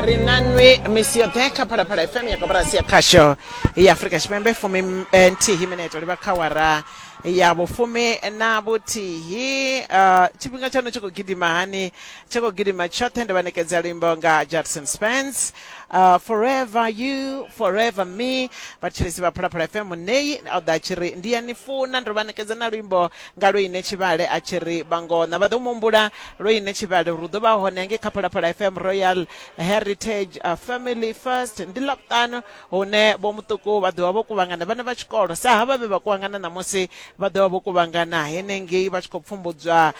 ri na nwi misi yoṱhe kha phalaphala fm ya koporasi ya khasho ya afurika tshipembe fumi m- eh, nthihi mineto livha kha wara ya vhufumi na vhuthihi uh, tshifhinga tshaṋu tshi khou gidima hani tshi khou gidima tshoṱhe ndi vha ṋekedza luimbo nga judson spence uh, forever you forever me vhatshilisi vha phalaphala fm muneyi o ḓa tshi ri ndi ya ni funa ndo vha ṋekedza na luimbo Nga lwoine tshivhale a tshi ri vha ngona vha ḓo mu humbula. Lwoine tshivhale ri ḓo vha hone ngei kha Phalaphala FM Royal Heritage Family First. Ndi Ḽavhuṱanu hune Vho Muṱuku vha ḓo vha vho kuvhangana vhana vha tshikolo sa havha vhe vha kuvhangana ṋamusi, vha ḓo vha vho kuvhangana henengei vha tshi khou pfumbudzwa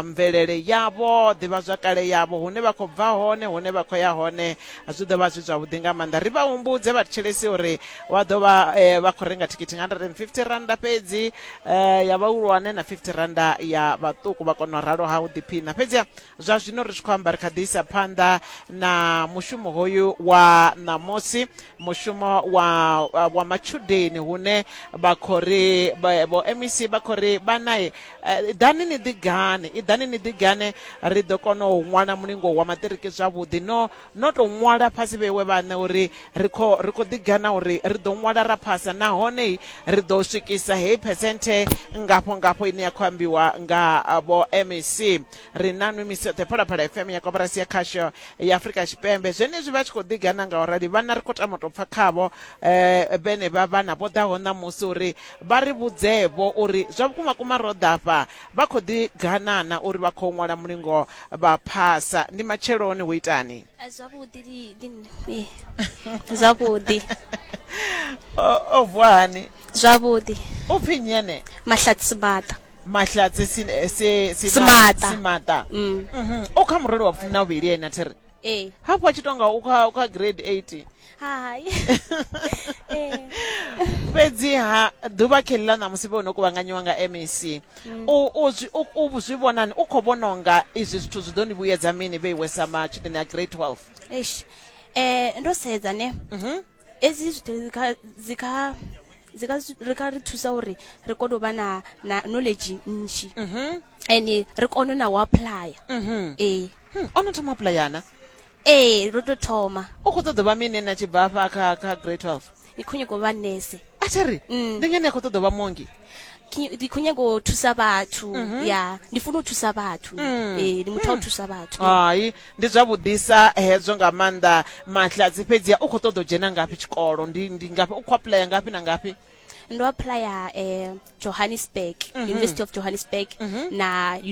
mvelele yavho, ḓivhazwakale yavho, hune vha khou bva hone, hune vha khou ya hone. Zwi ḓo vha zwi zwavhuḓi nga maanḓa. Ri vha humbudze vhathetshelesi uri vha ḓo vha vha khou renga thikhithi nga R150 fhedzi. eh ya vhahulwane na 50 randa ya vhaṱuku vha kona u ralo ha u ḓiphina fhedzi zwa zwino ri tshi khou amba ri kha ḓi isa phanḓa na mushumo hoyu wa ṋamusi mushumo wa wa matshudeni hune vha khou ri vha- vho mec vha khou ri vhanae eh, ḓani ni ḓigane i ḓani ni ḓigane ri ḓo kona u ṅwala mulingo wa maṱiriki zwavhuḓi no no tou ṅwala fhasi vhewe vhaṋe uri ri kho ri kho ḓigana uri ri ḓo ṅwala ra phasa nahone ri ḓo swikisa heyi phesenthe ngafho ngafho ine ya khou ambiwa nga vho mec ri na nwi misi yoṱhe phalaphala fm ya koporasi ya khasho ya afurika tshipembe zwenezwi vha tshi khou ḓigana nga urali vhana ri khou tama u tou pfa khavho um vhenevha vhana vho ḓaho ṋamusi uri vha ri vhudzeevho uri zwa vhukuma kuma ro ḓafha Vha khou ḓi ganana uri vha khou ṅwala mulingo vha phasa. Ndi matsheloni, hu itani? Zwavhuḓi, li, li, li, zwavhuḓi. O, o vuwa hani? Zwavhuḓi. U pfi nnyi ene? Mahlatsi Simaṱa. Mahlatsi si, si, Simaṱa. Simaṱa. Mm. Mhm. O kha murole wa vhufumi na vhuvhili ene a thi ri. ee hafhu a tshi tonga u kha u kha grade 8 hai ee fhedziha ḓuvha kheli ḽa ṋamusi vhe no kuvhanganyiwa nga mac u u zwi- u- u zwi vhonani u khou vhona unga izwi zwithu zwi ḓo ni vhuyedza mini vheiwe sa matshudeni a grade 12 eish eh ndo sedza ne edzi zwithu dzi kha- dzi kha- dzi kha zwi- ri kha ri thusa uri ri kone u vha na na knowledge nnzhi and ri kone na u applya ee Hmm, o no thoma pulayana ee ro to thoma u khou ṱoḓa vha mine na tshi bva afha kha kha grade twelve ndi khou nyaka u vha nese a thi ri Mm. ndi ngani a khou ṱoḓa vha mongi Ki- ndi khou nyanga u thusa vhathu ya ndi funa u thusa vhathu Eh, ndi muthu wa u thusa vhathu hai ndi zwavhuḓisa hezwo nga maanḓa mahladzi fhedzi u khou ṱoḓa u dzhena ngafhi tshikolo ndi ndi ngafhi u khou apuḽaya ngafhi na ngafhi ndo apuḽaya eh, johannesburg university of johannesburg na University